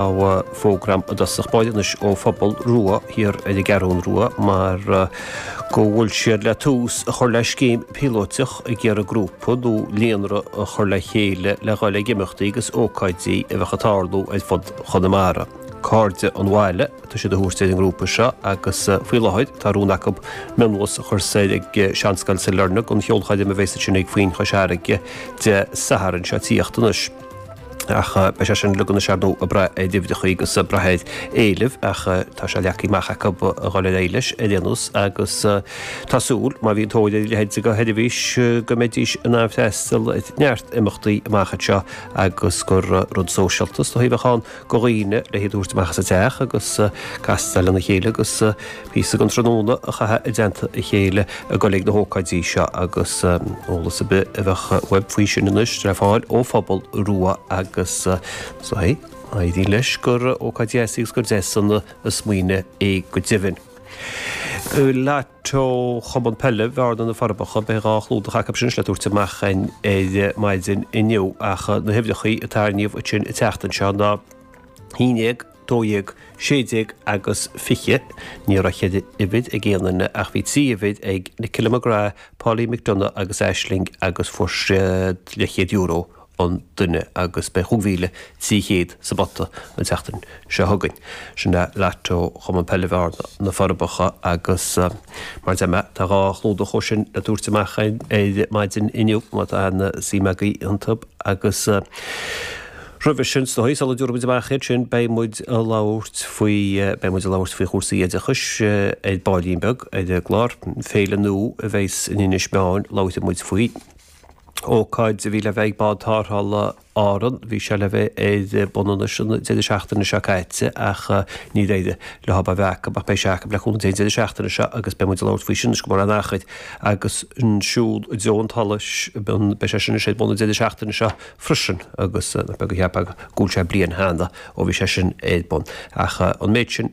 á fógra agam i dtosach báire anois ó Phobal Rua thiar ar an gCeathrún Rua mar go bhfuil siad le tús a chur le scéim píolóiteach ag iarraidh grúpa nó líonra a chur le chéile le dhul ag imeachtaí agus ócáidí a bheadh ag tarlú ar fud Chonamara. Cairde an Bhaile atá siad a thabhairt ar an ngrúpa seo agus faoi láthair tá rún acu mionbhus a chur soir ag Seanscoil Sailearna don cheolchoirm a bheas ansin ag Foinn Chois Fharraige Dé Sathairn seo ag tíocht anois. ach beidh sé sin uilig anois ar ndóigh ag braith ar uimhreacha agus ag braith ar éileamh ach tá sé leagtha amach acu a dhul ar aghaidh leis ar aon nós agus tá súil má bhíonn tóir ar a leithéid de sheirbhís go mbeidís in ann freastal ar neart imeachtaí amach anseo agus gur rud sóisialta is dóigh a bheadh ann do dhaoine le hiad a thabhairt amach as a dteach agus castáil lena chéile agus píosa den tráthnóna a chaitheamh i dteannta a chéile ag dul ag na hócáidí seo agus eolas ar bith a bheadh uaibh faoi sin anois le fáil ó Phobal Rua agus éiríonn leis gur ócáid dheas í agus gur deas an smaoineamh é go deimhin. teo Chumann Peile Bhearna, Na Forbacha, beidh dhá chlúdach acu sin le tabhairt amach ar maidin inniu ach na huimhreacha a tarraingíodh an tseachtain seo ná 11, 12, 16 agus 20. Ní raibh ceithre uimhir ag aon duine ach bhí trí uimhir ag Nicola McGrath, Pauline McDonagh agus Aisling agus fuair siad leathchéad euro an duine agus beidh chúig mhíle trí chéad sa bpota an tseachtain seo chugainn. Sin é Lotto Chumann Peile Bhearna, Na Forbacha agus mar deir mé, tá dhá chlúdach acu sin le tabhairt amach ar maidin inniu má tá suim agaibh iontu agus roimhe sin sa sula dtabharfaidh muid amach iad sin beidh muid a labhairt faoi, beidh muid a labhairt faoi chúrsaí oideachais ar baillín beag ar an gclár. Féile nua a bheidhs in Inis Meáin, labhróidh muid faoi. ócáid a bhí le bheith ag Bád Tárrthála Árann, bhí sé le bheith ar bun anois an deireadh seachtaine seo caite ach níor éirigh leo é a bheith acu ach beidh sé acu le cúnamh Dé an deireadh seachtaine seo agus beidh muid ag labhairt faoi sin anois gan mórán achair agus an Siúl i dTreo an tSolais, beidh sé sin anois ar bun an deireadh seachtaine seo freisin agus nach beag a cheap go bhfuil sé bliain cheana ó bhí sé sin ar bun ach an méid sin.